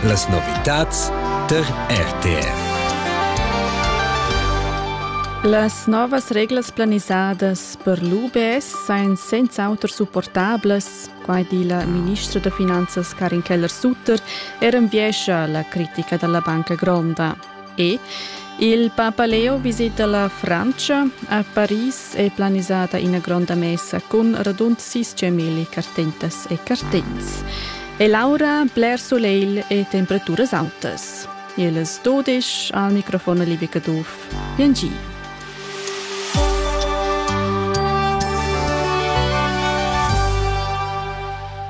Las novitads tar RTR. Las novas reglas planisadas per l'UBS sain senz'auter supportablas, quai di la ministra da finanzas Karin Keller-Sutter er enviescha la critica da la banca gronda. E il Papa Leo visita la Francia. A Paris è planisata ina gronda messa cun radund 600.000 cartentas e cartents. E l'aura bler soleil e temperaturas altas. Ils dodisch al microfon Livi Caduff. Piangi.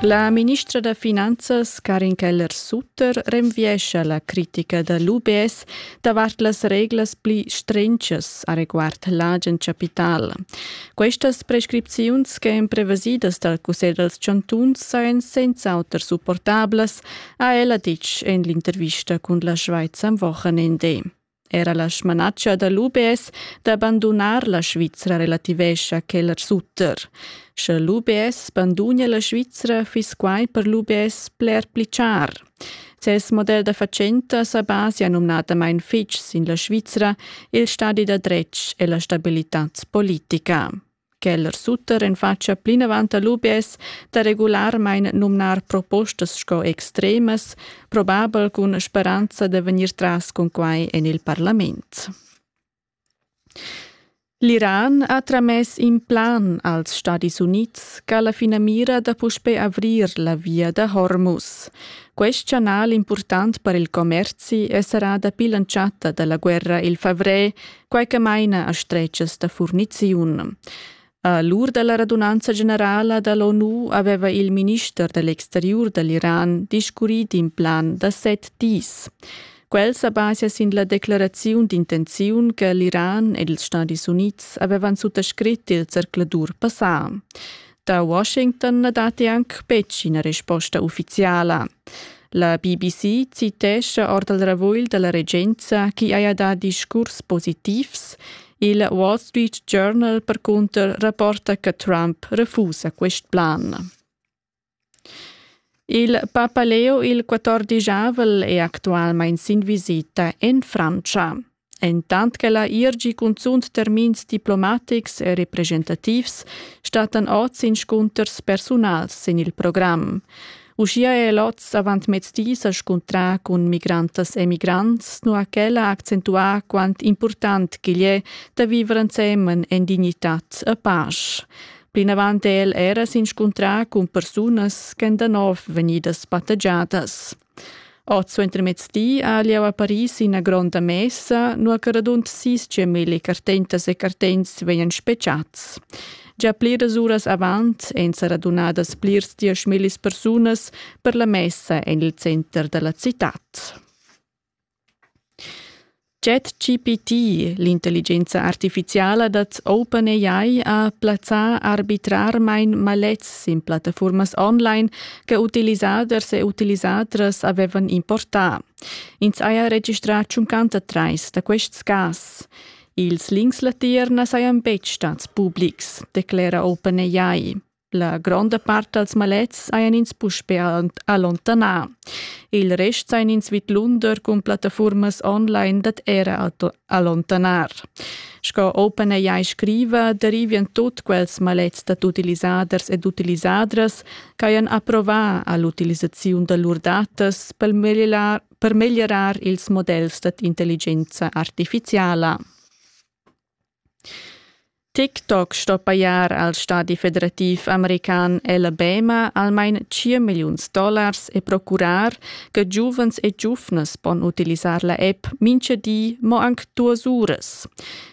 La ministra da Finanzas Karin Keller-Sutt L'auter renviescha la critica da l'UBS davart las reglas pli strenchas areguard l'agen chapital. Questas prescripziuns ch'èn prevesidas dal Cussegl dals chantuns sajan senz'auter supportablas, ha ella ditg en l'intervista cun la Schweiz am Wochenende. Era la smanatscha da l'UBS da bandunar la Svizra relativescha quel a sutter. Sche l'UBS bandunia la Svizra, fiss quai per l'UBS bler pli char. Ses model da fatschenta sa basia numnadamain fitg sin la Svizra, il stadi da dretg e la stabilitad politica. Quel suter en fatscha plinavant al UBS da regularmain numnar propostas sco extremas, probabel cun speranza da vegnir tras cun quai en il parlament. L'Iran ha tramess in plan als Stadis Unids ch'ha la finamira da puspè avrir la via da Hormuz. Quest chanal impurtant per il commerzi è serrà dapi l'entschatta da la guerra il favrer quai che maina a stretgas da furniziun. A l'ur da la radunanza generala da l'ONU aveva il minister da l'exteriur da l'Iran discurrì d'in plan da set dis. Quel sa basia sin la declaraziun d'intenziun che l'Iran ed ils Stadis Unids avevan suttascrit il zercladur passà. Da Washington na datti anc betg ina resposta uffiziala. La BBC citescha ord il ravugl da la regenza chi haja dà discurs positivs. Il Wall Street Journal percunter rapporta che Trump refusa quest plan. Il Papa Leo il 14 è actualmente in visita en Francia. Entant ch'ella ir gi cunzunt termins diplomatics e representativs stattan oz inscunters persunals sin il program. Uschia è el oz avant mezdi sa scuntrà cun migrantas e migrants, nua ch'ella ha accentuà quant important ch'igl è da viver ensemen en dignitad e pasch. Plinavant è el era s'inscuntrà cun persunas ch'èn da nov vegnidas battagiadas. Ord suentermezzdi ha lieu a Paris ina gronda messa, nua che radund sis gemilli cartentas e cartents vegnan spetgads. Gia pliras uras avant èn sa radunadas plirs dieschmillis persunas per la messa en il center da la citad. ChatGPT, l'intelligenza artificiala dad OpenAI, ha plazzà arbitrarmain maletgs sin plattafuormas online che utilisaders e utilisadras avevan importà. Ins haja registrà tschuncanta trais da quests cas. Ils links latiers na sajan betg stads publics, declera OpenAI. La gronda part dals malets hajan ins puspè allontanà. Il rest sajan ins vidlunder cun plattafurmas online dad era allontanar. Sco OpenAI scriva, derivian tut quels malets dad utilisaders ed utilisadras ch'hajan approvà a l'utilisaziun da lur datas per meglierar, per meglierar ils models dad intelligenza artifiziala. TikTok sto pajar al stadi federativ american Alabama almain tschient milliuns dollars e procurar che giuvens e giuvnas pon utilisar la app mincha di mo anc duos uras.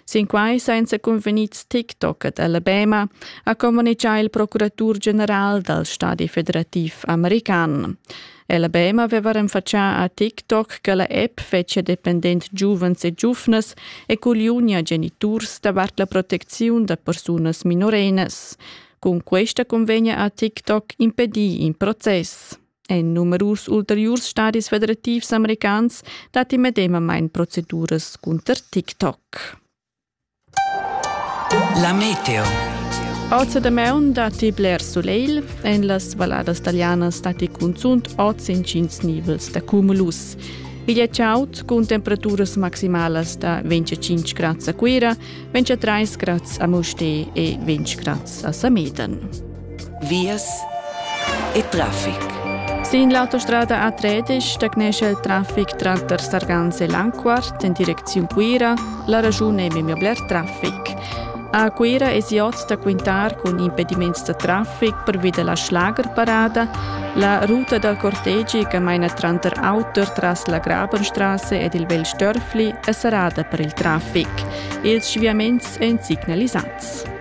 Sinquai sainza cunvegnids TikTok ad Alabama ha communichà il procuratur general dal stadi federativ american. Ella Bema veva renfatschà a TikTok che la app fetschia dependent giuvens e giuvnas e coliunia geniturs davart la protecziun da persunas minorenas. Cun questa convegna a TikTok impedì in process. En numerus ulteriurs stadis federativs americans datti medemamain proceduras cunter TikTok. La meteo. Oz damaun datti bler sulegl. En las valladas talianas datti cunzunt oz intgins nivels da cumulus. Igl è chaud cun temperaturas maximalas da 25 grads a Cuira, 23 grads a Mustér e 20 grads a Sameden. vias e traffic. Sin l'autostrada A13 stagnesce il traffic tranter Sarganze e Langquart in direcziun Cuira, la ragione è memia bler traffic. A Cuira es oz da quintar cun impediments da traffic pervi della Schlagerparada, la ruta dal cortegi che maina tranter auter tras la Grabenstraße ed il Vel Störfli è serrada per il traffic. Ils sviaments èn signalisats.